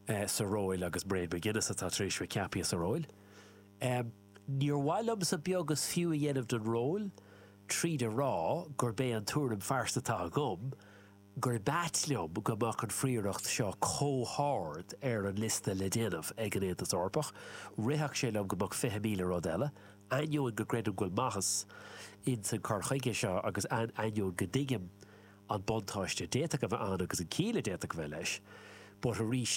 sa róil agus Mairead McGuinness atá tar éis a bheith ceaptha sa róil. Níor mhaith liomsa beag is fiú a dhéanamh den ról tríd a rá gurb é an tuairim phearsanta atá agam gurbh ait liom go mbeadh an phrioracht seo comh hard ar an liosta le déanamh ag an Aontas Eorpach. Rithfeadh sé liom go mbeadh fiche míle rud eile, ainneoin go gcreidim go bhfuil maitheas insan cur chuige seo agus ainneoin go dtuigim an buntáiste a d'fhéadfadh a bheith ann agus an ciall a d'fhéadfadh a bheith leis but arís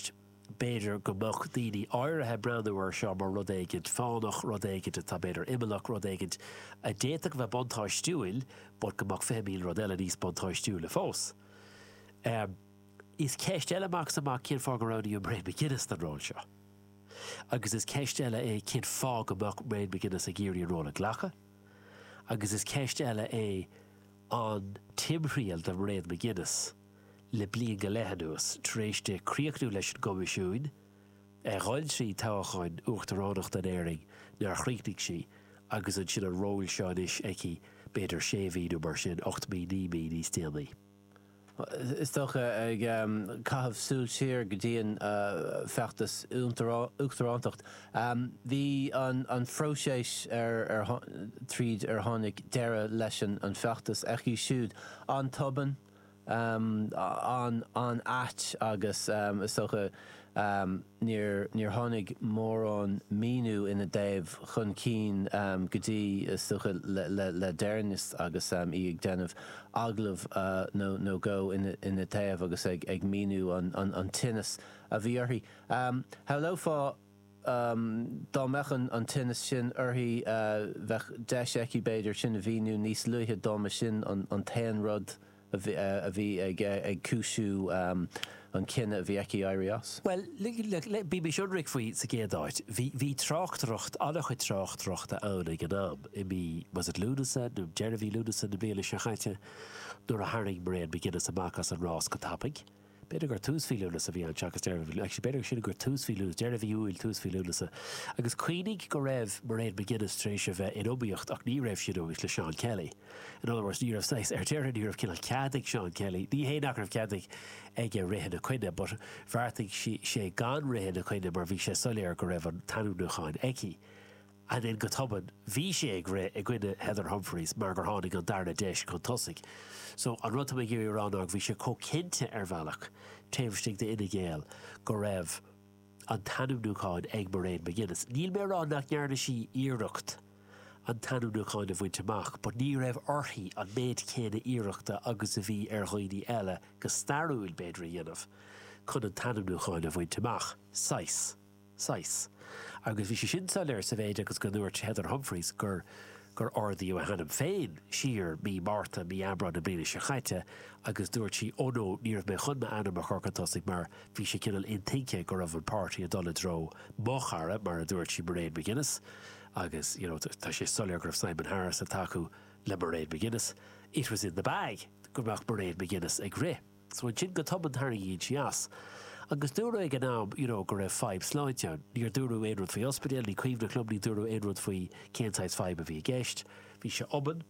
b'fhéidir go mbeadh daoine áirithe ag breathnú air seo mar rud éigin fánach, rud éigin atá b'fhéidir imeallach, rud éigin a d'fhéadfadh a bheith buntáistiúil but go mbeadh fiche míle rud eile níos buntáistiúla fós. Is ceist eile amach is amach cén fáth go roghnaíodh Mairead McGuinness don ról seo agus is ceist eile é cén fáth go mbeadh Mairead McGuinness ag iarraidh an ról a ghlacadh agus is ceist eile é an timthriall do Mhairéad McGuinness le bliain go leith anuas, tar éis di críochnú leis an gCoimisiúin, a dhul trí toghcháin uachtaránachta in Éirinn nár chríochnaigh sí, agus ansin an ról seo anois aici b'fhéidir sé mhí nó mar sin, ocht mí, naoi mí níos déanaí. is dócha, ag caitheamh súil siar go dtí an feachtas uachtarántacht. Bhí an phróiseas tríd ar tháinig deireadh leis an feachtas aici siúd an-tobann, an-ait agus is dócha Níor tháinig mórán míniú ina thaobh chun cinn go dtí, is dócha, le deireanas agus í ag déanamh agallamh nó dhó ina thaobh agus ag míniú an tinneas a bhí uirthi. Shamhlófá dá mbeadh an tinneas sin uirthi bheadh deis aici, b'fhéidir, sin a mhíniú níos luaithe dá mba sin an t-aon rud. a bhí ag cúisiú an cinneadh a bhí aici éirí as. Bhuel, bímis ionraic faoi. Sa gcéad áit, bhí tráchtaireacht, an-chuid tráchtaireacht ann ag an am, i mí, was it Lúnasa, nó deireadh mhí Lúnasa na bliana seo caite, nuair a tharraing Mairéad McGuinness amach as an rás go tapaidh. B'fhéidir gur tús mhí Lúnasa a bhí ann seachas deireadh mhí, actually b'fhéidir sea gur tús mhí Lúnasa, deireadh mhí Iúil, tús mhí Lúnasa. Agus cuimhnigh go raibh Mairéad McGuinness tar éis a bheith in iomaíocht ach ní raibh sí in iomaíocht le Seán Kelly. In other words, ní raibh saghas, ar deireadh ní raibh cineál cead ag Seán Kelly, ní hé nach raibh cead ag aige rith ina coinne but bheartaigh sí sé gan rith ina coinne mar bhí sé soiléir go raibh an t-ainmniúcháin aici. ansin go tobann, bhí sé ag rith i gcoinne Heather Humphreys mar gur tháinig an darna deis chun tosaigh. So, an rud atá mé ag iarraidh a rá ná go bhí sé chomh cinnte ar bhealach taobh istigh d'Fhine Gael go raibh an t-ainmniúchán ag Mairead McGuinness. Níl mé a rá nach ndearna sí iarracht an t-ainmniúchán a bhaint amach but ní raibh uirthi an méid céanna iarrachta agus a bhí ar dhaoine eile, go stairiúil b'fhéidir, a dhéanamh chun an t-ainmniúchán a bhaint amach, saghas. saghas. Agus bhí sé sin soiléir sa mhéid agus go ndúirt Heather Humphreys gur gur ardaíodh a hainm féin siar mí Márta, mí Aibreáin na bliana seo caite agus dúirt sí oh no, ní raibh mé chun m'ainm a chur chun tosaigh mar bhí sé cineál intuigthe go raibh an páirtí ag dul i dtreo mo chara, mar a dúirt sí, Mairead McGuinness agus you know tá sé soiléir go raibh Simon Harris ag tacú le Mairead McGuinness, it was in the bag go mbeadh Mairead McGuinness ag rith. So ansin go tobann tarraingíonn sí as. Agus dúradh ag an am you know go raibh fadhb sláinte ann. Níor dúradh aon rud faoi ospidéal, ní cuimhneach liom, níor dúradh aon rud faoi cén saghas fadhb a bhí i gceist. Bhí sé tobann.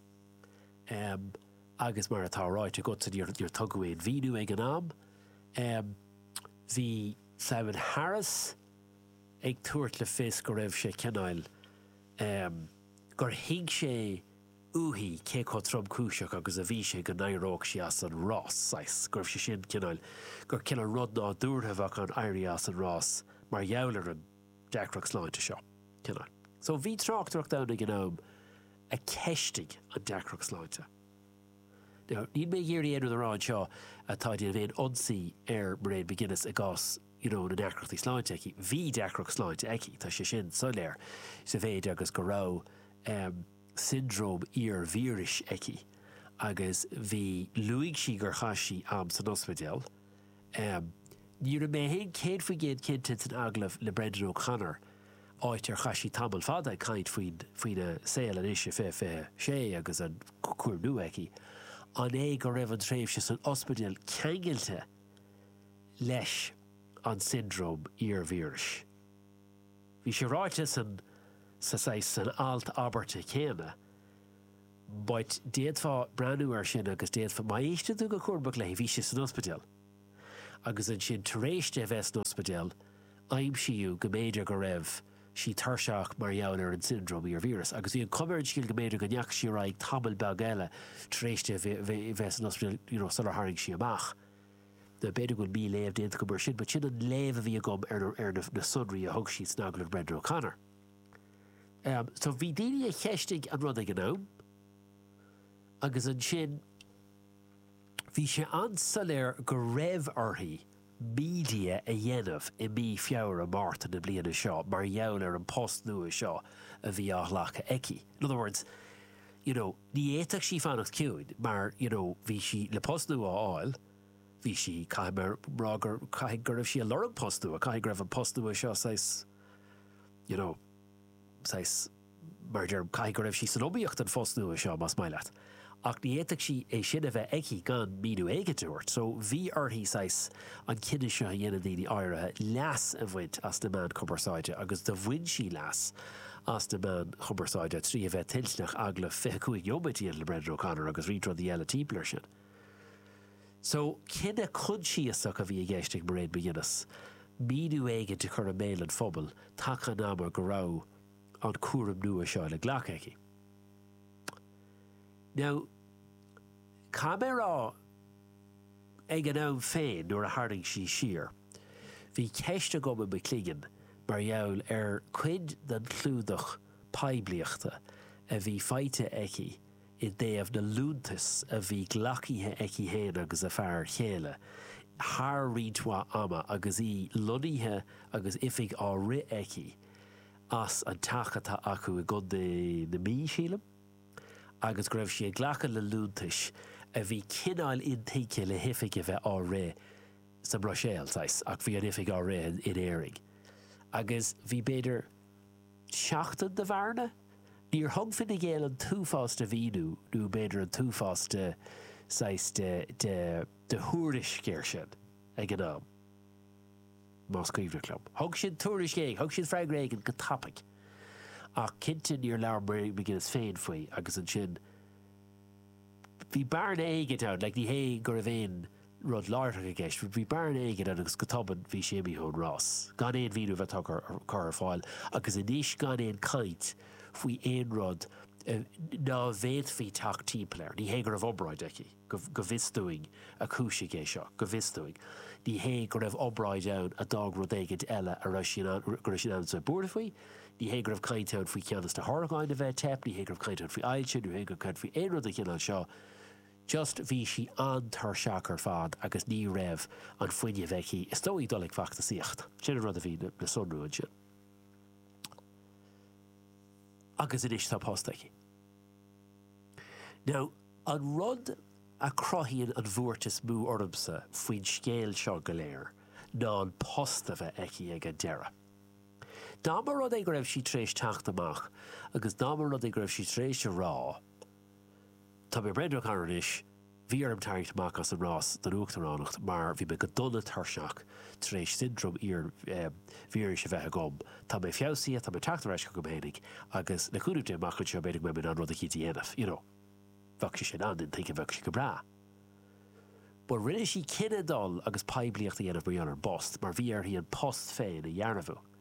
em, agus mar atá ráite agatsa níor, níor tugadh aon mhíniú ag an am. Em, bhí Simon Harris ag tabhairt le fios go raibh sé cineál, em, gur thuig sé, uaithi cé chomh tromchúiseach agus a bhí sé go n-éireodh sí as an rás, saghas, go raibh sé sin, cineál, gur cineál rud nádúrtha a bheadh ann éirí as an rás mar gheall ar an deacracht sláinte seo, cineál. So bhí tráchtaireacht ann ag an am a cheistigh an deacracht sláinte. Now, níl mé ag iarraidh aon rud a rá anseo atá ag déanamh aon ionsaí ar Mairead McGuinness i gcás, you know, na ndeacrachtaí sláinte aici. Bhí deacracht sláinte aici, tá sé sin soiléir, sa mhéid agus go raibh, em, siondróm iar-víris aici agus bhí, luaigh sí gur chaith sí am san ospidéal. Um Ní raibh mé féin céad faoin gcéad cinnte san agallamh le Brendan O'Connor, áit ar chaith sí tamall fada ag caint faoin faoina saol anois i 20 26 agus an cúram nua aici, an é go raibh an tréimhse san ospidéal ceangailte leis an siondróm iar-víris? Bhí sé ráite san sa saghas, san alt, abairt chéanna, but d'fhéadfá breathnú air sin agus d'fhéadfá, má éisteann tú go cúramach léi, bhí sé san ospidéal agus ansin tar éis di a bheith san ospidéal aimsíodh go mb'fhéidir go raibh sí tuirseach mar gheall ar an siondróm iar-víris agus bhí an chuma ar an scéal go mb'fhéidir go ndeachaigh sí ar aghaidh tamall beag eile tar éis di a bheith san ospidéal you know sular tharraing sí amach B'fhéidir go bhfuil mí-léamh déanta agam ar sin, but sin an léamh a bhí agam ar na ar na na sonraí a thug siad san agallamh le Brendan O'Connor. Um, so bhí daoine a cheistigh an rud ag an am, agus ansin bhí sé an-soiléir go raibh uirthi media a dhéanamh i mí Feabhra, Márta na bliana seo mar gheall ar an post nua seo a bhí á ghlacadh aici. In other words, you know ní fhéadfadh sí fanacht ciúin mar you know bhí sí le post nua a fháil bhí sí caithfidh mé a rá gur caithfidh go raibh sí ag lorg post nua caithfidh go raibh an post nua seo saghas you know saghas mar a déarfá caithfidh go raibh sí san iomaíocht don phost nua seo más maith leat ach ní fhéadfadh sí é sin a bheith aici gan míniú éigin a thabhairt so bhí uirthi saghas an cinneadh seo a dhéanann daoine áirithe leas a bhaint as na meáin chumarsáide agus do bhain sí leas as na meáin chumarsáide trí a bheith toilteanach agallamh 25 nóiméad a dhéanamh le Brendan O'Connor agus roinnt rudaí eile timpeall ar sin. So, cinneadh coinsiasach a bhí i gceist ag Mairead McGuinness, míniú éigin a chur i mbéal an phobail taca an ama go raibh an cúram nua seo le glacadh aici. Now, caithfidh mé a rá, Ag an am féin, nuair a tharraing sí siar, bhí ceist agam i mo chloigeann mar gheall ar chuid den chlúdach poiblíochta a bhí faighte aici i dtaobh na liúntas a bhí glacaithe aici féin agus a fear chéile thar roinnt mhaith ama agus í lonnaithe agus oifig á rith aici as an teach atá acu i gContae na Mí, sílim. agus go raibh sí ag glacadh le liúntais a bhí cineál intuigthe le hoifig a bheith á rith sa mBruiséil, saghas, ach bhí an oifig á rith in Éirinn. Agus bhí, b'fhéidir, seachtain de bhearna? Níor thug Fine Gael an t-uafás de mhíniú nó b'fhéidir an t-uafás de, saghas, de, de, de thuairisc ar sin ag an am. más cuimhneach liom. Thug siad tuairisc éigin, thug siad freagra éigin go tapaidh. Ach cinnte níor labhair McGuinness féin faoi agus ansin bhí bearna éigin ann, like ní hé go raibh aon rud láithreach i gceist but bhí bearna éigin ann agus go tobann bhí sí imithe ón rás gan aon mhíniú a bheith curtha ar fáil agus anois gan aon chaint faoi aon rud nach bhféadfaí teacht timpeall air. Ní hé go raibh obráid aici. Go bhfios dúinn a chúisigh é seo. Go bhfios dúinn. Ní hé go raibh obráid ann a d'fhág rud éigin eile go raibh sí in ann a bheith buartha faoi. Ní hé go raibh caint ann faoi cheann de na horgáin a bheith ag teip, ní hé go raibh caint ann faoi ailse, ní hé go raibh caint faoi aon rud den chineál seo. Just bhí sí an-tuirseach ar fad agus ní raibh an fuinneamh aici is dóigh dul ag feachtasaíocht. Sin an rud a bhí le sonrú ansin. Agus anois tá post aici. Now, an rud a chruthaíonn an bhuairt is mó ormsa faoin scéal seo go léir ná an post a bheith aici ag an deireadh. Dá mba rud é go raibh sí tar éis teacht amach agus dá mba rud é go raibh sí tar éis a rá, Tá mé breoite anois, Bhí orm tarraingt amach as an rás don uachtaránacht mar bhí mé go dona tuirseach tar éis siondróm iar-víris a bheith agam. Tá mé feabhsaithe, tá mé ag teacht ar ais chugam fhéinig agus le cúnamh Dé amach anseo b'fhéidir go mbeidh mé in ann rud eicínt a dhéanamh, you know. Bheadh sé sin an-intuigthe, bheadh sé go breá. Bhuel, rinne sí cinneadh dul agus poiblíocht a dhéanamh mar gheall ar an bpost mar bhí uirthi an post féin a dhearbhú.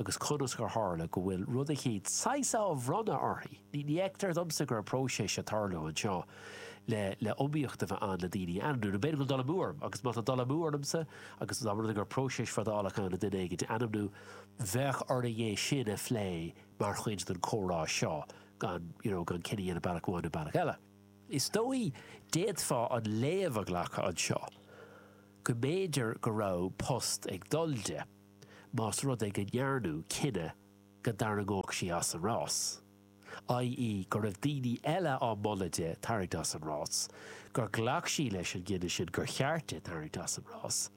agus conas gur tharla go bhfuil rud eicínt saghas á bhronnadh uirthi, ní fheictear domsa go raibh próiseas ag tarlú anseo le le iomaíocht a bheith ann le daoine a ainmniú, nó b'fhéidir go bhfuil dul amú orm, agus má tá dul amú ormsa agus dá mba rud é go raibh próiseas fadálach ann le duine éigint a ainmniú, bheadh orainn é sin a phlé mar chuid den comhrá seo gan you know gan cinneadh a dhéanamh bealach amháin nó bealach eile. Is dóigh, d'fhéadfá an léamh a ghlacadh anseo go mb'fhéidir go raibh post ag dul di. más rud é go ndearnadh cinneadh go dtarraingeodh sí as an rás, ii, go raibh daoine eile á moladh di tarraingt as an rás, gur ghlac sí leis an gcinneadh sin gur cheart di tarraingt as an rás,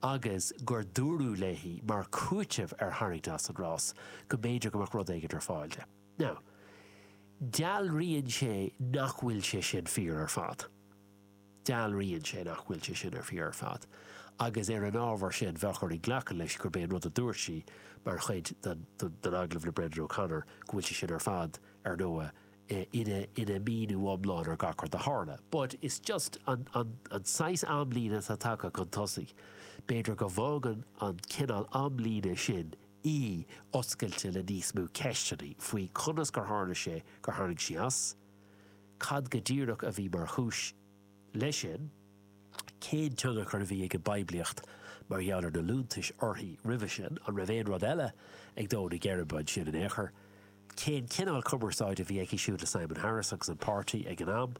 agus gur dúradh léi mar chúiteamh ar tharraingt as an rás go mb'fhéidir go mbeadh rud éigin ar fáil di. Now, dealraíonn sé nach bhfuil sé sin fíor ar fad. Dealraíonn sé nach bhfuil sé sin ar fíor ar fad agus ar an ábhar sin bheadh orainn glacadh leis gurb é an rud a dúirt sí mar chuid den agallamh le Brendan O'Connor go bhfuil sé sin ar fad, ar ndóigh, ina míniú iomlán ar gach rud a tharla. But is just an saghas amlíne atá tagtha chun tosaigh. B'fhéidir go bhfágann an cineál amlíne sin í oscailte le níos mó ceisteanna faoi conas gur tharla sé gur tharraing sí as, Cad go díreach a bhí mar chúis leis sin? Cén tionchar a bhí ag an bpoiblíocht mar gheall ar na liúntais uirthi roimhe sin? An raibh aon rud eile ag dó na geirbe ansin in aon chor? Cén cineál cumarsáide a bhí aici siúd le Simon Harris agus an páirtí ag an am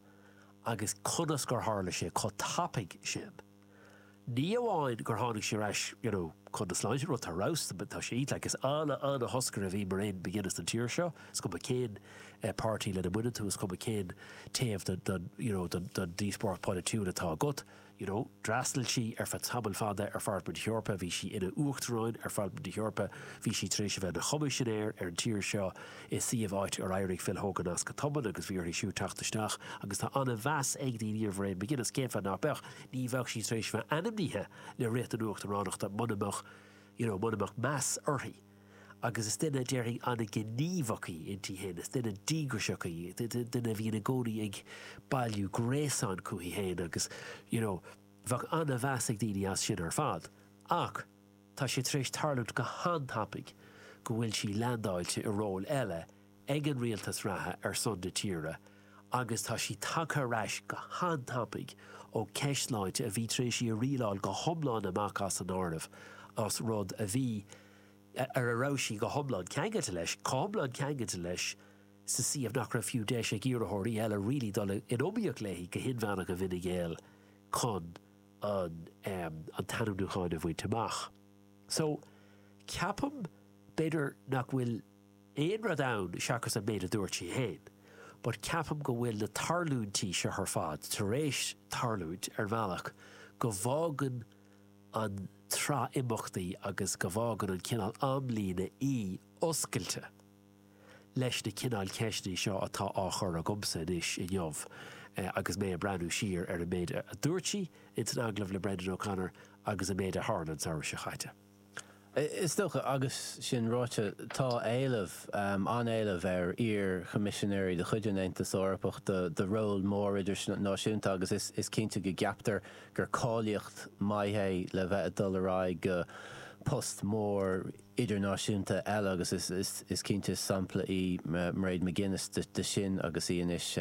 agus conas gur tharla sé chomh tapaidh sin? Ní amháin gur tháinig sí ar ais you know chun na sláinte rud atá ar fheabhas, tá sé iontach is ana ana thoscaire a bhí Mairead McGuinness don tír seo is cuma cén eh páirtí lena mbaineann tú is cuma cén taobh den den you know den den díospóireacht polaitiúil atá agat you know d'fhreastail sí ar feadh tamaill fada ar Pharlaimint na hEorpa bhí sí ina uachtarán ar Pharlaimint na hEorpa bhí sí tar éis a bheith ina choimisinéir ar an tír seo i suíomh áit ar éirigh Phil Hogan as go tobann agus bhí uirthi siúd teacht isteach agus tá an-mheas ag daoine ar Mhairéad McGuinness. Cén fáth nach beadh? Ní bheadh sí tar éis bheith ainmnithe le rith na huachtaránachta muna mbeadh you know muna mbeadh meas uirthi. Agus is duine, déarfainn, an-ghníomhach í inti féin. Is duine díograiseach í, duine a bhíonn i gcónaí ag bailiú gréasáin chuici féin agus you know bheadh an-mheas ag daoine as sin ar fad. Ach. Tá sé tar éis tarlúint go han-tapaidh go bhfuil sí leandáilte i ról eile ag an rialtas reatha ar son na tíre agus tá sí tagtha ar ais go han-tapaidh ó cheist sláinte a bhí tar éis í a rialáil go hiomlán amach as an áireamh as rud a bhí ar a raibh sí go hiomlán ceangailte leis, chomh hiomlán ceangailte leis sa suíomh nach raibh fiú deis ag iarrthóirí eile really dul in iomaíocht léi go hinmheánach i bhFine Gael chun an an t-ainmniúchán a bhaint amach. So, ceapaim, b'fhéidir nach bhfuil aon rud ann seachas an méid a dúirt sí féin, but ceapaim go bhfuil na tarlúintí seo ar fad tar éis tarlúint ar bhealach go bhfágann an tsraith imeachtaí agus go bhfágann an cineál amlíne í oscailte. leis na cineáil ceisteanna seo atá á chur agamsa anois inniu agus mé ag breathnú siar ar an méid a dúirt sí in san agallamh le Brendan O'Connor agus an méid a tharla an samhradh seo chaite. Is dócha, agus sin ráite, tá éileamh, an-éileamh ar iar-Choimisinéirí de chuid an Aontais Eorpach do róil mór idirnáisiúnta agus is cinnte go gceaptar gur cáilíocht maith é le bheith ag dul ar aghaidh go post mór idirnáisiúnta eile agus is cinnte sampla í Mairead McGuinness de sin agus í anois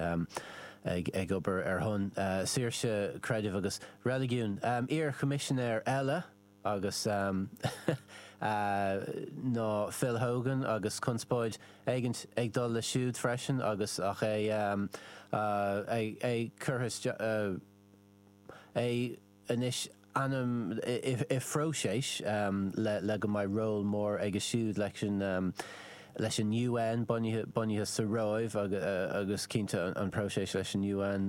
ag obair ar son saoirse creidimh agus reiligiún. Iar-Choimisinéir eile agus ná Phil Hogan agus conspóid éigint ag dul leis siúd freisin agus ach é é curtha isteach. anois ainm i phróiseas le go mbeidh ról mór aige siúd leis an leis an UN bunaithe sa Róimh agus cinnte an próiseas leis an UN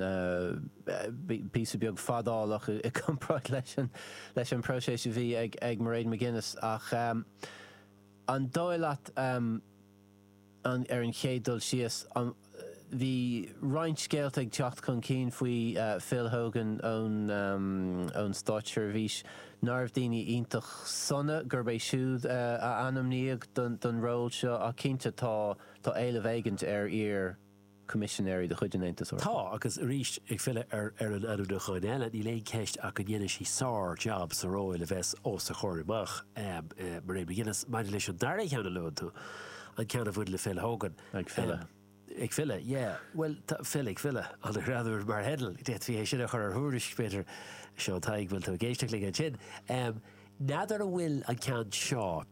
píosa beag fadálach i gcomparáid leis an bpróiseas a bhí ag Mairead McGuinness ach an dóigh leat Ar an chéad dul síos, bhí roinnt scéalta ag teacht chun cinn faoi Phil Hogan ón státseirbhís. Nárbh daoine iontach sona, gurb é siúd a ainmníodh don ról seo ach cinnte tá éileamh éigint ar iar. Coimisinéirí de chuid an Aontais Eorpaigh. Tá, agus arís, ag filleadh ar ar an ainmniúchán eile, níl aon cheist ach go ndéanfaidh sí sár-jab sa ról a bheas os a comhair amach. Mairead McGuinness, maidir leis an dara ceann a luann tú, an ceann a bhain le Phil Hogan, Ag filleadh. ag filleadh, yeah, bhuel, tá Phil ag filleadh, an-ghreannmhar mar headline, d'fhéadfaí é sin a chur ar thuairisc, b'fhéidir, Seán Tadhg, bhfuil tú ag éisteacht linn ansin? N'fheadar an bhfuil an ceann seo.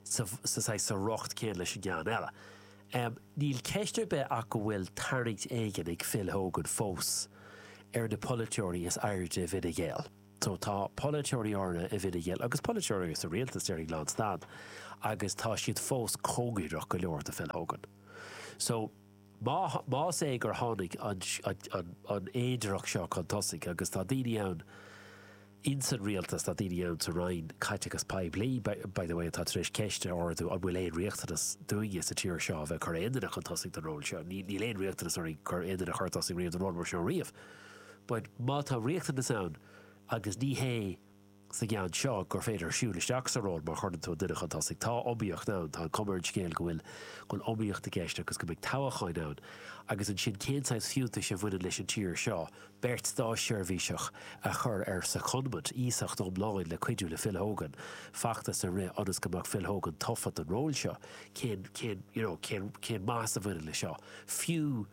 sa riocht céanna leis an gceann eile. Níl ceist ar bith ach go bhfuil tarraingt éigin ag Phil Hogan fós ar na polaiteoirí is airde i bhFine Gael. So tá polaiteoirí áirithe i bhFine Gael agus polaiteoirí sa rialtas, déarfainn, lán stad agus tá siad fós cóngareach go leor do Phil Hogan, so. Más é gur tháinig an fhéidearthacht seo chun tosaigh, agus tá daoine ann ins an Rialtas, tá daoine ann sa Roinn Caiteachais Poiblí, by the way, atá tar éis ceist a ardú, an bhfuil aon riachtanas dúinne sa tír seo a bheith ag cur aon duine chun tosaigh don ról seo? Níl aon riachtanas orainn cur aon duine chun tosaigh riamh don ról mar seo riamh. But má tá riachtanas ann, agus ní hé. sa gceann seo gur féidir siúl isteach sa ról má chuireann tú an duine chun tosaigh. Tá iomaíocht ann, tá an chuma ar an scéal go bhfuil go bhfuil iomaíocht i gceist agus go mbeidh toghchán ann agus ansin cén saghas fiúntais a bhaineann leis an tír seo beirt státseirbhíseach a chur ar secondment, iasacht iomlán le cuidiú le Phil Hogan feachtas a rith ionas go mbeadh Phil Hogan tofa don ról seo. Cén, cén, you know, cén, cén maitheas a bhaineann leis seo? Fiú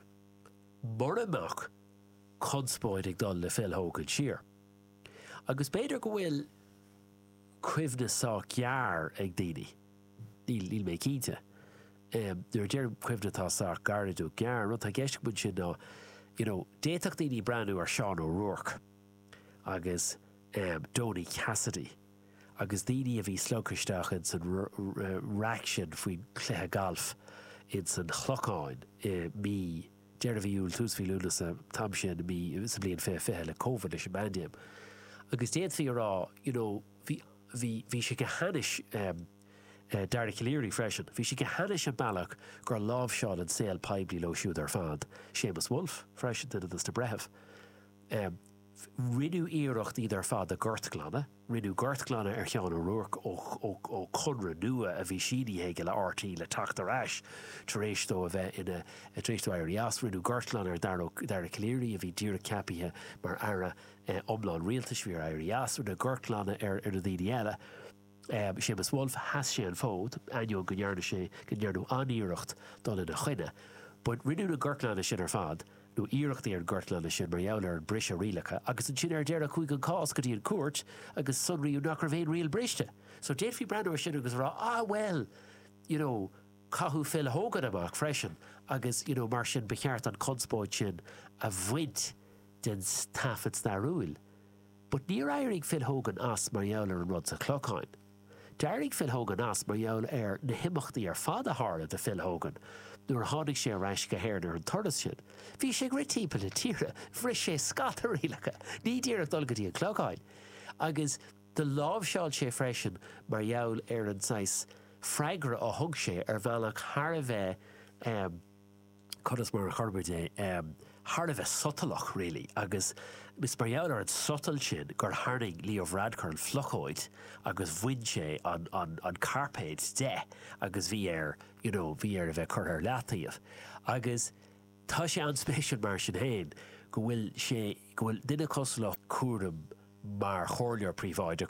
mura mbeadh conspóid ag dul le Phil Hogan siar. Agus b'fhéidir go bhfuil cuimhne sách gearr ag daoine, níl, níl mé cinnte. Nuair a deirim cuimhne atá sách gairid nó gearr, an rud atá i gceist agam ansin ná you know d'fhéadfadh daoine breathnú ar Seán O'Rourke agus Donie Cassidy agus daoine a bhí slogtha isteach ins an raic sin faoin gcluiche gailf ins an Chlochán i mí deireadh mhí Iúil, tús mhí Lúnasa, an t-am sin mí, sa bhliain fiche fiche le Covid, leis an bpaindéim. Agus d'fhéadfaí a rá, you know, bhí, bhí, bhí sé go hainnis, em, eh, Dara Calleary freisin, bhí sé go hainnis an bealach gur láimhseáil an saol poiblí leo siúd ar fad, Seamus Woulfe freisin, duine dos na breithimh, em, Rinneadh iarracht iad ar fad a ghortghlanadh. Rinneadh gortghlanadh ar Sheán O'Rourke ó chonradh nua a bhí sínithe aige le RTÉ le teacht ar ais tar éis dó a bheith ina tar éis dó éirí as. Rinneadh gortghlanadh ar Dara Ó Dara Calleary a bhí díreach ceapaithe mar Aire iomlán Rialtais bhí air éirí as. Rinneadh gortghlanadh ar na daoine eile. Séamus Woulfe, sheas sé an fód, ainneoin go ndearna sé go ndearnadh an-iarracht dul ina choinne. But rinneadh an gortghlanadh sin ar fad, nó iarrachtaí ar an gortghlanadh sin, mar gheall ar an briseadh rialacha agus ansin ar deireadh chuaigh an cás go dtí an cúirt agus sonraíodh nach raibh aon riail briste. So d'fhéadfaí breathnú ar sin agus a rá ah well you know caitheadh Phil Hogan amach freisin agus you know mar sin ba cheart an conspóid sin a bhaint den taifead stairiúil. But níor éirigh Phil Hogan as mar gheall ar an rud sa Chlochán. D'éirigh Phil Hogan as mar gheall ar na himeachtaí ar fad a tharla do Phil Hogan nuair a tháinig sé ar ais go hÉirinn ar an turas sin. Bhí sé ag rith timpeall na tíre, bhris sé scata rialacha, ní díreach dul go dtí an Clochán, agus do láimhseáil sé freisin mar gheall ar an saghas freagra a thug sé ar bhealach thar a bheith, eh, conas mar a chuirfimid é, thar a bheith sotalach, really, agus is mar gheall ar an sotal sin gur tharraing Leo Varadkar an phlocóid agus bhain sé an cairpéad de agus bhí air, you know, bhí air a bheith curtha ar leataobh. Agus tá sé an-spéisiúil mar sin féin go bhfuil sé, go bhfuil duine cosúil le cúram mar chomhairleoir príobháideach,